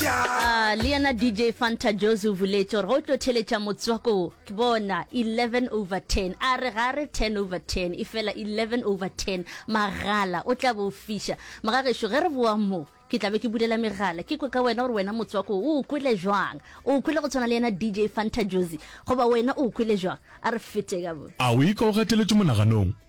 Ahh le yena DJ Fanta Jozi o buletše gore ga o tlo theletša motswako wo, ke bona 11 over 10 a re ga re 10 over 10 e fela 11 over 10 magala o tla be o fiša magagešo ge re boa mo ke tla be ke bulela megala ke kwe ka wena gore wena motswako wo o o kwele jwang o o kwele go tshwana le yena DJ Fanta Jozi goba wena o o kwele jwang a re fete ka bo A o ika o gateletšwe monaganong?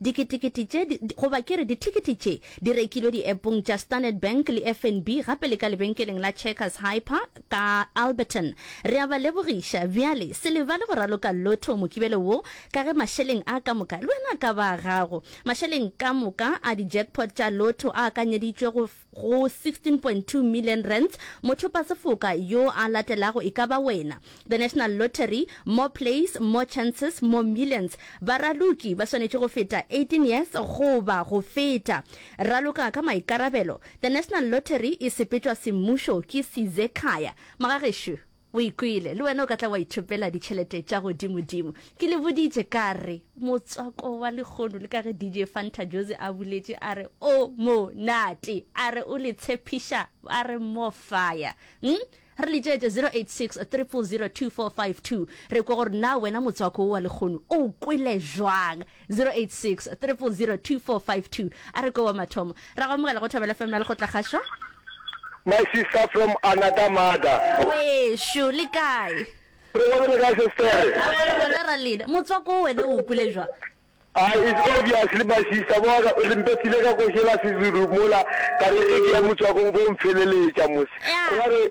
Diketekete tše, di, di, goba ke re dithekete tše, di rekilwe diepong tša Standard Bank le FNB, gape le ka lebenkeleng la Checkers Hyper ka Alberton. Re a ba lebogiša. Bjale, se lebale go raloka lotto Mokibelo wo, ka ge mašeleng a ka moka, le wena a ka ba a gago. Mašeleng ka moka a di-jackpot tša lotto a akanyeditšwe go, go R16.2 million, mothopasefoka yo a latelago e ka ba wena. The National Lottery, More plays, more chances, more millions. Baraloki ba swanetše go feta 18 years goba go feta. Raloka ka maikarabelo. The National Lottery e sepetšwa semmušo ke Sizekhaya. Magagešo. O e kwele, le wena o ka tla wa ithopela ditšhelete tša godimodimo. Ke le boditše ka re, Motswako wa lehono, le ka ge DJ Fanta Jozi a boletše a re, O monate! A re o le tshepiša a re more fire. Umm, re letšeetše 086 000 2452 re kwe gore na wena motswako wo wa lehono o o kwele bjang. 0863002452 a re ko wa mathomo ra go amogela go thobela fm la lekgotlakgašo My sister from another mother. Wešo le kae? Re gona le kae sestere? Re gona ra lena. Motswako o wena o kwile jwa? Ah, it's obvious le my sister bona re mpetile ka košela Sezulu mola ka re ge ke ya motswakong bo mpheleletša mos. Re ba re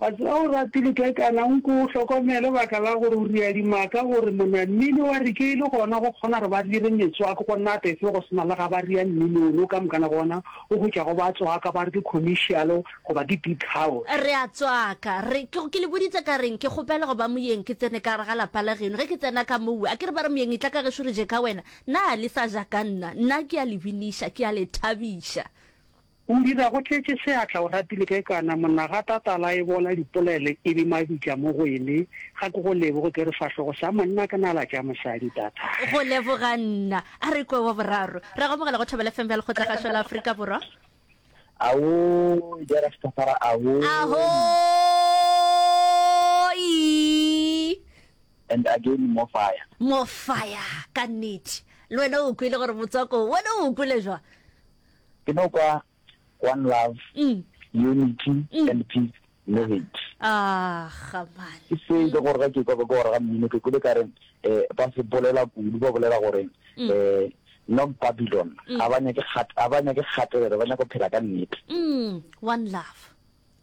Batho ba o ratile ke kana o nko o hlokomele baka la gore o ria dimaka gore mona mmino wa re ke le gona go kgona gore ba dire metswako go nna befe go sena le ga ba ria mmino o no ka moka na gona o go tšwa go ba tswaka ba re ke commercial go ba ke big house. Re a tswaka re ke ke le boditse ka reng ke kgopela go ba moyeng ke tsene ka gare ga lapa la geno ge ke tsena ka mowe a ke re ba re moyeng e tla ka gešo re je ka wena na le sa ja ka nna nna ke a le biniša ke a le thabiša O dira go tletše seatla o ratile ge kana monna ga tatala e bola dipolele e bi mabitla mo go ene ga ke go leboge ke re fahlogo sa monna ke nala tša mosadi tatala. Go leboga nna. A re kwe wa boraro. Re a go amogela go Thobela FM bja Lekgotlagašo la Afrika Borwa. Awoo ja Rastafara awoo. Ahooii. And again more fire. More fire ka nnete. Le wena o kwele gore motswako wona o kwele jwang? Ke no kwa One Love, Unity and Peace Lyrics. Ke se e le gore ga ke kwa ka kwa gore ga mmino ke kule ka re ba se bolela kudu ba bolela gore North Babylon ga ba nyake kgatelelo ba nyaka go phela ka nnete. One Love.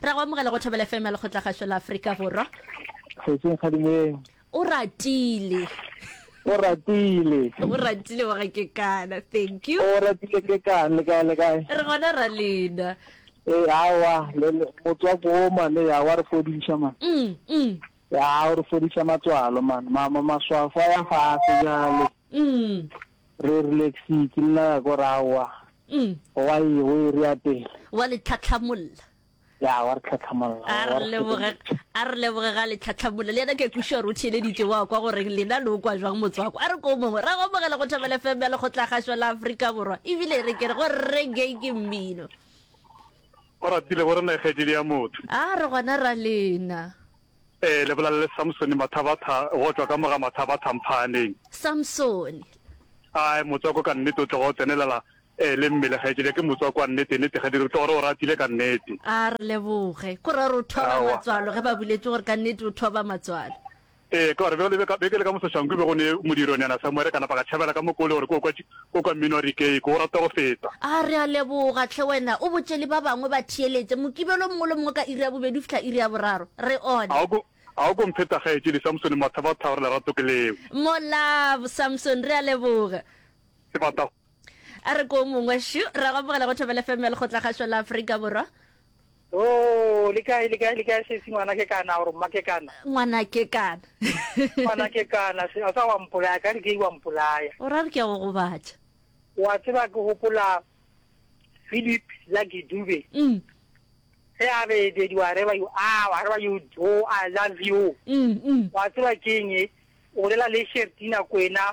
Ra go amogela go Thobela FM ya Lekgotlagašo la Afrika Borwa. Kgotsing kgadimeng. O ratile. O ratile. O ratile wa ga ke kana. Thank you. O ratile ke kana le kae le kae. Re gona ra lena. Eh awa le motho wa go ma le ya wa re fodisha man. Mm. Mm. Ya o re fodisha matswalo man. Mama maswafa ya fa se jalo. Mm. Re rile xii ke nna ka gore aowa wa e o e rea pele. Wa le tlhatlhamolla. Ya wa re tlhatlhamolla. A re leboge a re leboge ga le tlhatlhamolla le yena ke a kwešiša gore o theeleditše wa kwa goreng lena le o kwa jwang motswako. A re ko mongwe ra go amogela go Thobela FM ya Lekgotlagašwa la Afrika Borwa e bile e re ke re go reggae ke mmino. Oratile gore na e kgaetšedi ya motho. A re gona ra lena. Ee, le bolalele Samsone mathabatha go tšwa ka moga mathabatha mphaaneng. Samsone. Ae, motswako ka nnete o tloga o tsenelela, ee, le mmele gaetšedi ya ke motswako wa nnete, nnete Gadiri, o tloga re o ratile ka nnete. A re leboge. Ko ra re o thoba Aowa. matswalo ge ba buletše gore ka nnete o thoba matswalo. Ee, ka gore bjalo beke le ka moso Shanku e bego ne modiro nyana sa mo ere ka napa ka tšhabela ka mo ko le gore ke o kwa tši, O ka minoa dikeiko, o rata go feta. A re a leboga, hle wena o botše le ba bangwe ba theeletše. Mokibelo mongwe le mongwe ka iri ya bobedi go fihla iri ya boraro. Re one. A o ko, a o ko mpheta Kgaetšedi Samsone, mathaba a tharo, lerato ke leo. Molao, Samsone, re a leboga. Ke bata go. A re ko o mongwe. Shu, re a go amogela go Thobela FM ya Lekgotlakgašo la Afrika Borwa. Ooh, le kae, le kae, le kae sesi ngwana ke kana, or mma ke kana? Ngwana ke kana. Ngwana ke kana, se, a ka wa mpolaya, ka re ke wa mpolaya. O ra re ke a go gobatša. Wa tseba ke gopola Philip Lucky Dube. Mm. Ge a be dedi wa reba you, ah, wa reba you, oh, I love you. Mm, mm. Wa tseba ke eng e? O bolela le Shertina Kwena,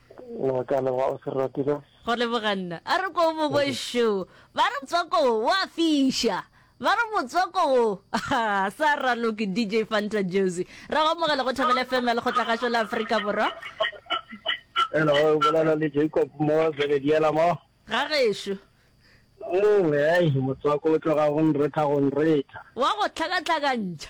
Wa ka leboga o se ratile. Go leboga nna. A re ko bo bošo ba re motswako wo wa fiša. Ba re motswako wo ha sa raloke DJ Fanta Jozi. Ra go amogela go Thobela FM ya Lekgotlagašo la Afrika Borwa. Hello, o bolela le Jacob mo Zebediela mo. Ga gešo. Mongwe ai motswako o tloga go nretha go nretha. Wa go tlhakatlhakantšha.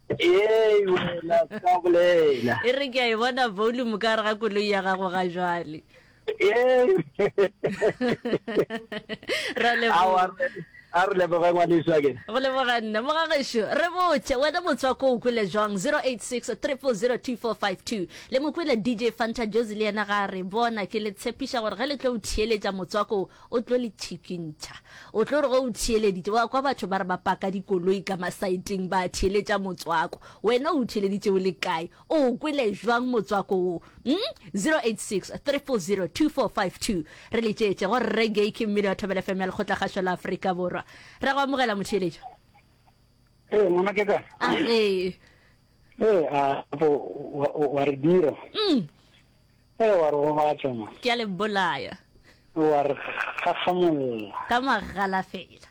Ee, wena ka bolela. E re ke a e bona volume ka gare ga koloi ya gago ga jwale. Ee. Ra leboga. A re leboga ngwaneso ke. Go leboga nna mo ga gešo. Re botse wena motswako o kwele jwang 086 3402452. Le mo kwele DJ Fanta Jozi le yena ga re bona ke le tshepiša gore ge le tlo o theeletša motswako O tlo le thikintšha. O tlo re ge o theeleditše, wa kwa batho ba re ba paka dikoloi ka masaeteng ba theeletša motswako, wena o theeleditše o le kae? O o kwele jwang motswako wo? Umm, 0863402452. Re letšeetše go Rre Gay ke mmino wa Thobela FM ya Lekgotlakgašo la Afrika Borwa. Ra go amogela motheeletšo. Ee, ngwana ke ka. A ee. Ee, a, bo, wa, wa re dira. Umm. Ee, wa re gobatša mo. Ke a le bolaya. Wa re kgakgamolla. Ka magala fela.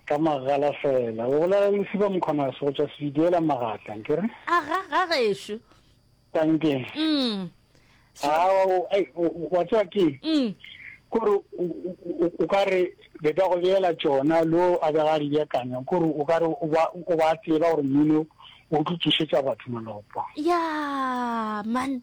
Ka magala fela. O bolela le Sepa Mkhwanazi go tšwa Sebidiela Magatla, nke re? A ga, ga gešo. Tankeng. Mm. So. A, wa, wa tswa ke. Mm. Kore o ka re be ba go beela tšona lo a be ga di beakanya kore o ka re o ba o ba tseba gore mmino o tlo tsošetsa batho malopo. Yeah, man.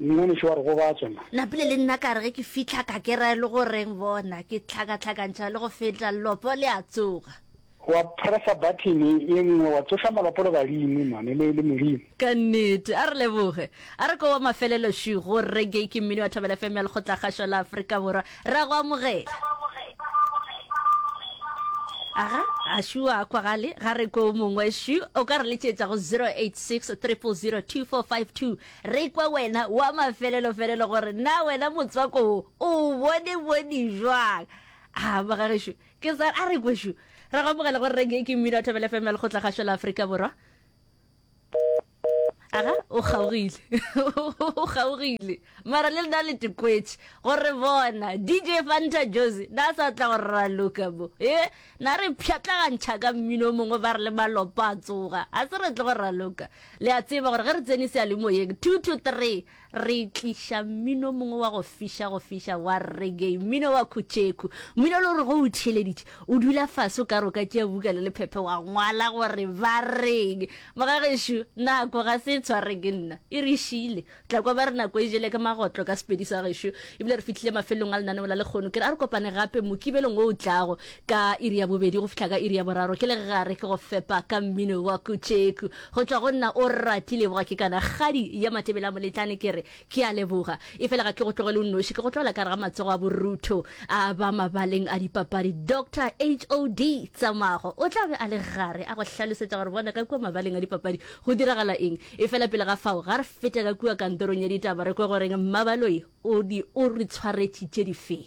Mengwanešu wa re gobatša na. Napile le nna ka re ge ke fihla ka ke ra e le go reng bona, ke hlakahlakantšha le go feta lelopo le a tsoga. Wa pressa button ye nngwe wa tsoša malopo le badimo man e le Modimo. Ka nnete. A re leboge. A re ke wa mafelelo šwi go Reggae ke mmino wa Thobela FM ya Lekgotlakgašo la Afrika Borwa. Re a go amogela. Aga, a šwi wa kwagale, ga re kwe o mongwe šwi. O ka re letšetša go 086 300 2452. Re kwa wena wa mafelelofelelo gore na wena motswako wo o o bone bone jwang. A ba ga gešo ke sa a re kwe šo. Re go amogela gore reng e ke mmino a thobele FM ya lekgotla gašo la Afrika Borwa. Aga o kgaogile. o kgaogile. Mara le lena le tekwetše gore bona DJ Fanta Jozi na sa tla go raloka bo. Eh Na re pšhatlagantšha ka mmino o mongwe ba re le malopa a tsoga. Ga se re tle go raloka. Le a tseba gore ge re tsene seyalemoyeng, two to three, re tliša mmino o mongwe wa go fiša go fiša wa reggae, mmino wa khutšhekhu, mmino o le gore ge o theeleditše, o dula fase o ka re o ka tšea buka le lephephe wa ngwala gore ba reng. Mogagešo, nako ga se e tshware ke nna, e re šiile. tla kwa ba re nako e jele ka magotlo ka sepedi sa gešo ebile re fihlile mafelong a lenaneo la lekgono ke re a re kopane gape mokibelong o o tlago ka iri ya bobedi go fihla ka iri ya boraro ke le gare ke go fepa ka mmino wa kutšeku go tšwa go nna o rati leboga ke kana kgadi ya matebele a moletlane ke re ke a leboga e fela ga ke go tlogele o noši ke go tlogela ka re ga matsogo a borutho a ba mabaleng a dipapadi dr hod tsamago o tla be a le gare a go hlalosetsa gore bona ka kua mabaleng a dipapadi go diragala eng Efela pele ga fao, ga re fete ka kua kantorong ya ditaba re kwe gore Mmabaloi o di o re tshwaretšitše difeng.